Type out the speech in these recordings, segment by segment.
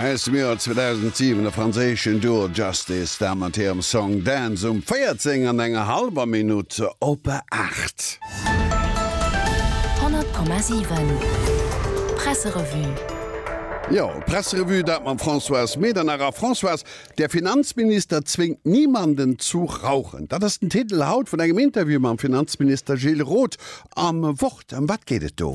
Aus dem Joer 2007, de franséischen Duo Justice, da mat hirem Song Dance um 14 an enger hallwer Minutt op 8. 100,7 Presserevue. Jo, Presserevue, dat mam Françoise Medernach. A Françoise, Der Finanzminister zwéngt niemanden zu rauchen, dat ass den Titel haut vun engem Interview mam Finanzminister Gilles Roth Am Wort, ëm wat geet et do?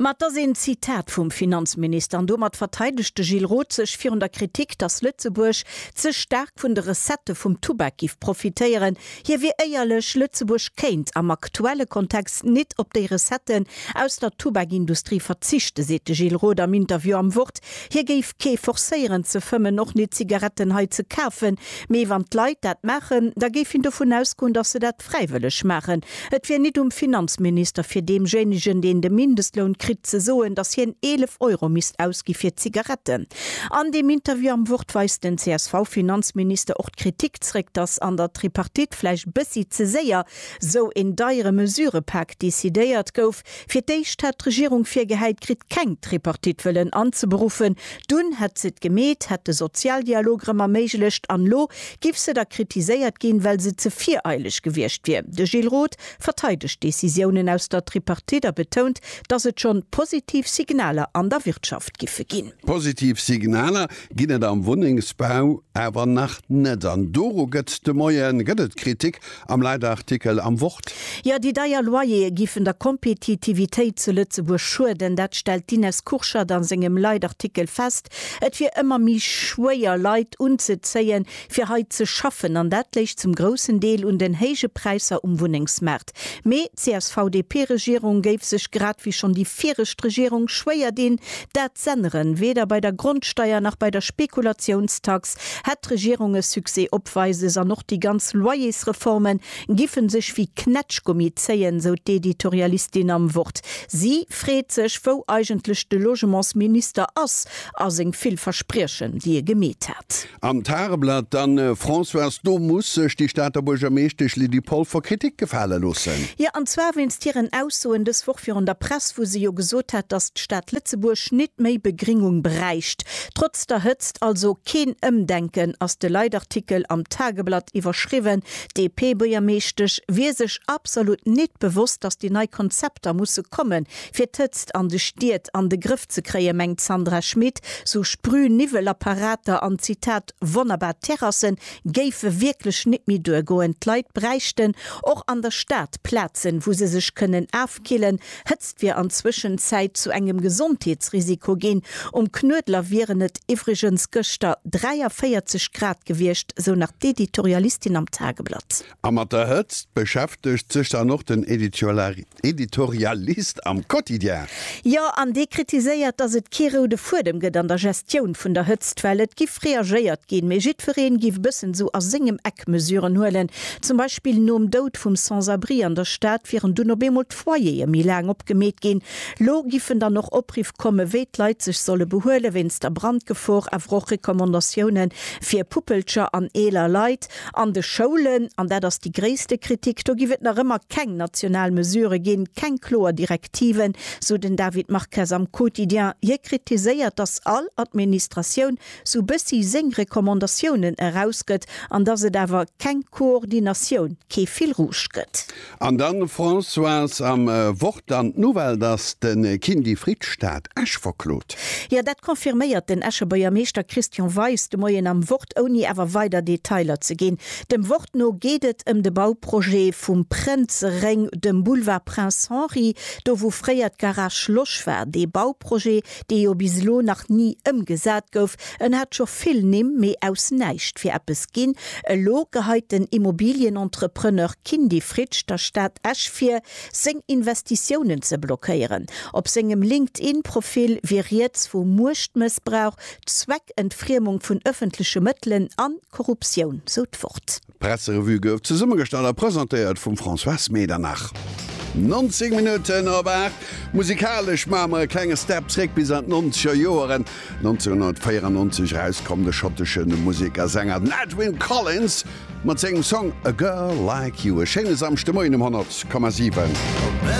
Ma et ass een Zitat vum Finanzminister an domat verteidegt de Gilles Roth sech virun der Kritik, datt Lëtzebuerg ze staark vun de Recettë vum Tubak giff profitéieren. Hie wier éierlech, Lëtzebuerg kéint am aktuelle Kontext nit op déi Recetten aus der Tubakindustrie verzichten, seet de Gilles Roth am Interview am Wort. Hie géif kee forcéieren ze fëmmen, och nit Zigaretten hei ze kafen, mee wann d'Leit dat maachen, da géif hien dovun ausgoen, datt se dat. fräiwëlleg maachen. Et wier nit um Finanzminister fir deemjéinegen, deen de Mindestloun kritt, ze soen, datt hien 11 Euro misst ausgi fir Zigaretten. An deem Interview am Wort weist den CSV-Finanzminister och d'Kritik zréck, datt an der Tripartite vläicht bëssi ze séier sou een deiere Mesurëpak decidéiert gouf. Fir d'éischt hat d'Regierung virgehäit kritt, keng Tripartite wëllen anzeberuffen, dunn hätt se et gemeet, hätt de Sozialdialog erëm erméiglecht an elo giff se da kritiséiert ginn, well se ze vireileg gewiescht wier. De Gilles Roth verteidegt d'Decisiounen aus der Tripartite a betount, datt et schonn positiv Signaler an der Wirtschaft giffe ginn. Positiv Signaler ginn et am Wunnengsbau awer nach net an doru gëtt de Moie gëtt et Kritik Am Leitartikel am Wort. Jo, déi deier Loyere giffen der Kompetitivitéit zu Lëtzebuerg schueden. Dat stellt d'Ines Kurschat a sengem Leitartikel fest. Et wier ëmmer méi schwéier, Leit unzezéien, fir hei ze schaffen. An dat léich zum groussen Deel un den héije Präisser um Wunnengsmaart. Mee d'CSV-DP-Regierung géif sech, grad wéi schonn déi viregt Regierung, schwéier dinn, dat z'änneren. Weder bei der Grondsteier nach bei der Spekulatiounstax Hätt d'Regierung e Succès opweises an och déi ganz Loyersreforme giffen sech wéi Knätschgummi zéien, sou d'Editorialistin am Wort. Si freet sech, wou eigentlech de Logementsminister ass a seng vill Verspriechen, déi e gemeet hat. Am Tageblatt dann, Françoise, do muss sech déi Stater Buergermeeschtesch Lydie Polfer Kritik gefale loossen. Jo, an zwar wéinst hiren Aussoen dës Woch virun der Press, wou se jo gesot hat, datt d'Stad Lëtzebuerg nit méi Begringung bräicht. Trotz der Hëtzt also keen Ëmdenken, ass de Leitartikel am Tageblatt iwwerschriwwen. D'DP-Buergermeeschtesch wier sech absolut nit bewosst, datt déi nei Konzepter musse komme fir d'Hëtzt an de Stied an de Grëff ze kréie mengt d'Sandra Schmid. Sou Sprühniwwelapparater an, Zitat, wonnerbar Terrasse géife wierklech nit méi duergoen. D'Leit bräichten och an der Stad Plazen, wou se sech kënnen opkillen. Hëtzt wier an Zwëschenzäit zu engem Gesondheetsrisiko ginn. Um Knuedler wieren et iwwregens gëschter 43 Grad gewiescht, sou nach d'Editorialistin am Tageblatt. A mat der Hëtzt beschäftegt sech dann och den Editorialist am Quotidien. Jo, an dee kritiséiert, datt et kee roude Fuedem gëtt an der Gestioun vun der Hëtzt, well et giff reagéiert ginn, mee jiddwereen giff e bëssen esou a sengem Eck Mesuren huelen. Zum Beispill nom Doud vum Sans-abri an der Stad wieren dunn op eemol d'Foyere méi laang opgemeet ginn. Lo giffen dann och Opriff komme wéi d'Leit sech solle behuele wéinst der Brandgefor, awer och Recommandatioune fir Puppelcher an eeler Leit. An de Schoulen, an dat ass déi gréisste Kritik, do giff et nach ëmmer keng national Mesure ginn, keng kloer Direktiven, sou den David Marques am Quotidien. Hie kritiséiert, datt all Administratioun sou bëssi seng Recommandatiounen erausgëtt an dass et awer keng Koordinatioun, kee Fil rouge gëtt. An dann, Françoise, am Wort an d'Nouvelle, dass de Kindy Fried d'Stad Esch verklot? Jo, dat confirméiert den Escher Buergermeeschter Christian Weis de Moien am Wort, ouni awer weider Detailer ze ginn. Dem Wort no geet et ëm de Bauprojet vum Prënzeréng, dem Boulevard Prince Henri, do wou fréier d'Garage Losch war. Dee Bauprojet dee jo bis elo nach ni ëmgesat gouf, en hat scho vill Nimm, mee aus näischt wier eppes ginn. Elo geheit den Immobilienentrepreneur Kindy Fritsch der Stad Esch vir, seng Investitiounen ze blockéieren. Op sengem LinkedIn-Profil wier rieds vu Muechtmëssbrauch, Zweckentfriemung vun ëffentleche Mëttelen an Korruptioun, sou d'Wort. D'Presserevue gouf zesummegestallt a presentéiert vum Françoise Medernach. 19 Minutten op 8. Musikalesch maache mer e klenge Step zréck bis an d'nonzeger Joeren. 1994 erauskomm, de schottesche Musek a Sänger den Edwyn Collins mat sengem Song A Girl Like You. E schéine Samschdemoien um 100,7.